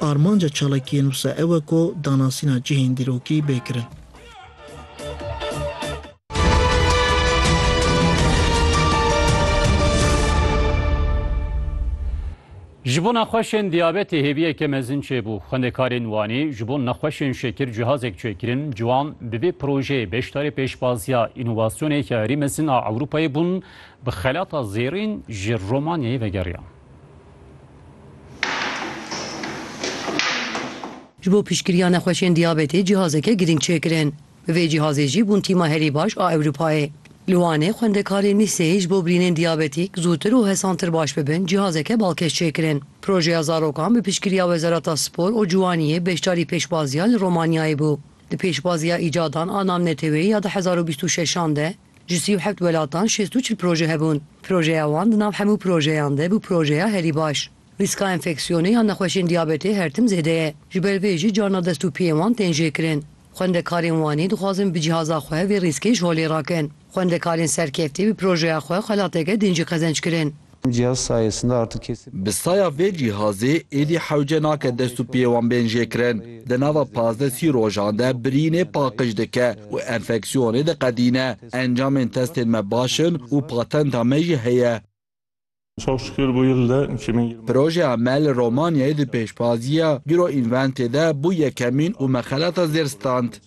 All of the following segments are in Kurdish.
Armanca çalakiyên wisa ew e ku danasîna cihên dîrokî bê kirin. Ji bo nexweşên diyabetê hêviyeke mezin çêbû. Xwendekarên Wanê ji bo nexweşên şekir cihazek çêkirin, ji wan bi vê projeyê beşdarê pêşbaziya înovasyoneke herî mezin a Ewropayê bûn, bi xelata zêrîn ji Romanyayê vegeriyan. Ji bo piştgiriya nexweşên diyabetê cîhazeke girîng çêkirin. Bi vê cîhazê jî bûn tîma herî baş a Ewropayê. Li Wanê xwendekarên lîseyê ji bo birînên diyabetîk zûtir û hesantir baş bibin cîhazeke balkêş çêkirin. Projeya zarokan bi piştgiriya Wezareta Spor û Ciwaniyê beşdarî pêşbaziya li Romanyayê bû. Di pêşbaziya îcadan a namneteweyê ya du hezar û bîst û şeş an de, Ji sî û heft welatan şêst û çil proje hebûn. Projeya wan di nav hemû projeyan de bû projeya herî baş. Rîska enfeksiyonê ya nexweşên diyabetê her tim zêde ye. Ji ber vê jî carna dest û piyên wan tên jêkirin. Xwendekarên Wanê dixwazin bi cîhaza xwe vê rîskê ji holê rakin. Xwendekarên serkeftî bi projeya xwe xelateke din jî qezenc kirin. Em cihaz sayesinde artık kesip. Bi saya vê cihazê êdî hewce nake dest û piyê wan bên jêkirin. Di nava pazdeh sî rojan de birînê paqij dike û enfeksiyonê diqedîne. Encamên testên me baş in û patenta me jî heye. Çok şükür bu yıl da iki bin yirmi. Projeya me li Romanyayê di pêşbaziya Euroinventê de bû yekemîn û me xelata zêr stand.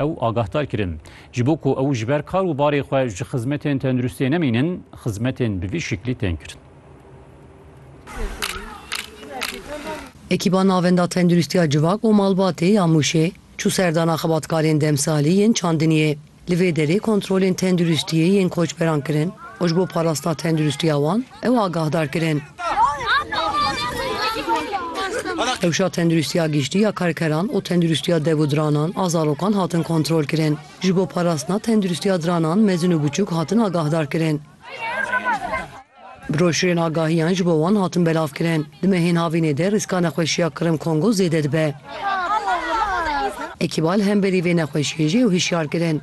Ew agahdar kirin, ji bo ku ew ji ber kar û barê xwe ji xizmetên tenduristiyê nemînin, xizmetên bi vî şeklî tên kirin. Ekîba Navenda Tenduristiya Civak û Malbatê ya Mûşê çû serdana xebatkarên demsalî yên çandiniyê. Li vê derê kontrolên tenduristiyê yên koçberan kirin. û ji bo parastina tenduristiya wan ew agahdar kirin. Rewşa tenduristiya giştî ya karkeran û tenduristiya dev û diranan a zarokan hatin kontrol kirin. Ji bo parastina tenduristiya diranan mezin û biçûk hatin agahdar kirin. Broşurên agahiyan ji bo wan hatin belav kirin. Di mehên havînê de rîska nexweşiya Kirim Kongo zêde dibe. Ekîbal hemberî vê nexweşiyê jî ew hişyar kirin.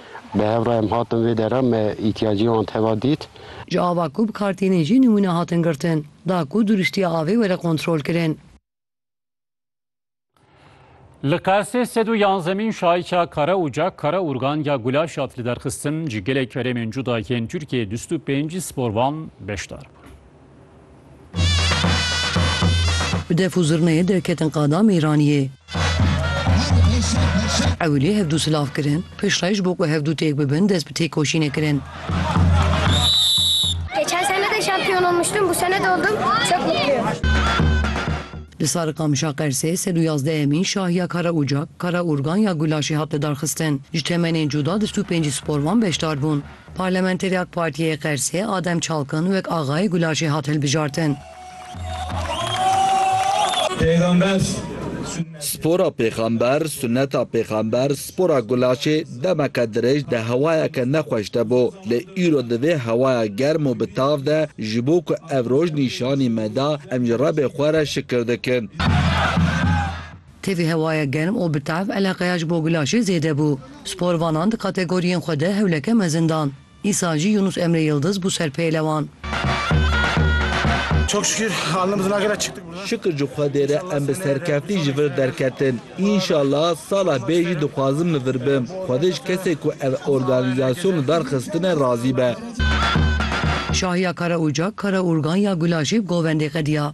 Bi hev re em hatin vê dera, me îhtiyacê wan teva dît. Ji ava ku bi kar têne jî nimûne hatin girtin, da ku duriştiya avê were kontrolkirin. Li Qersê sed û yanzdemîn şaîça Kara Ucak, Kara Urgan ya Gulaş hat liderxistin, ji gelek herêmên cuda yên Tirkiyeyê dûst û pêncî sporvan beşdar bûn. Bi def û zirneyê derketin qada mêraniyê. Ewilî hevdû silav kirin, piştre ji bo ku hevdû têk bibin dest bi têkoşînê kirin. Geçen sene de şampiyon olmuştum. Bu sene de oldum. Çok mutluyum. Li Sarikamişa Qersê sed û yazdehemîn şah ya Karaocak, Karaurgan ya Gulaşê hat lidarxistin. Ji temenên cuda di stûpên cî sporvan beşdar bûn. Parlamenterê ak Partiyê Qersê Adem Çalkan wek Axayê Gulaşê hat hilbijartin. Spora Pêxember, Sunneta Pêxember, Spora Gulaşê demeke dirêj di hewayeke nexweş de bû, lê îro di vê hewaya germ û bi tav de ji bo ku ev roj nîşanî me da em ji Rebê xwe re şikir dikin. Tevî hewaya germ û bi tev eleqeya ji bo gulaşê zêde bû. Sporvanan di kategoriyên xwe de hewleke mezin dan. Îsal jî Yunus Emre Yildiz bû ser pêlewan. Şikir ji Xwedê re em bi serkeftî ji vir derketin. Înşallah sala bê jî dixwazim li vir bim. Xwedê ji kesê ku ev organîzasyon li dar xistine razî be. Şahiya Karaûcak, Karaûrgan ya Gulaşê bi Govendê qediya.